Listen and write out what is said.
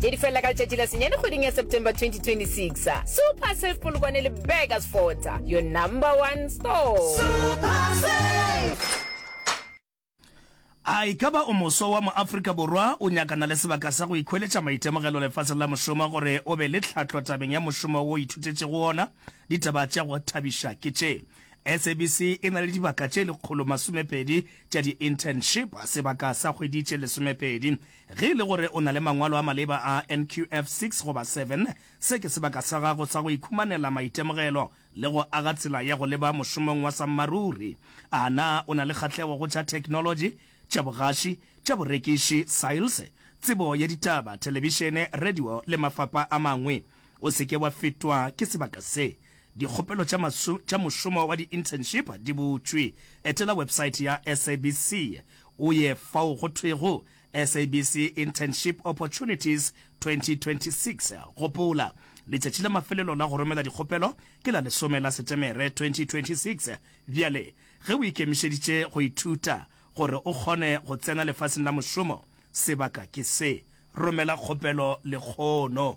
tše di felela ka letšatši la senyane kgweding ya September 2026. Super Safe Polokwane le Burgers Fort, your number one store. A e ka ba o moswa wa mo-Afrika Borwa o nyakana le sebaka sa go ikhweletša maitemogelo lefaseng la mošomo gore o be le tlhahlo tabeng ya mošomo wo o ithutetšego wona? Ditaba tša go thabiša ke tše. SABC e na le dibaka tše lekgolo masomepedi tša di-internship, sebaka sa kgwedi tše lesomepedi Ge e le gore o na le mangwalo a maleba a NQF six goba seven, se ke sebaka sa gago sa go ikhumanela maitemogelo le go aga tsela ya go leba mošomong wa sammaruri. A na o na le kgahlego go tša theknolotši, tša bogaši, tša borekiši, sales, tsebo ya ditaba, thelebišene, radio le mafapha a mangwe? O se ke wa fetwa ke sebaka se. Dikgopelo tša maso, tša mošomo wa di-internship di butšwe. Etela websaete ya SABC o ye fao go thwego SABC Internship Opportunities 2026. Gopola, letšatši la mafelelo la go romela dikgopelo ke la lesome la Setemere 2026. Bjale, ge o ikemišeditše go ithuta gore o kgone go tsena lefaseng la mošomo, sebaka ke se. Romela kgopelo lekgono.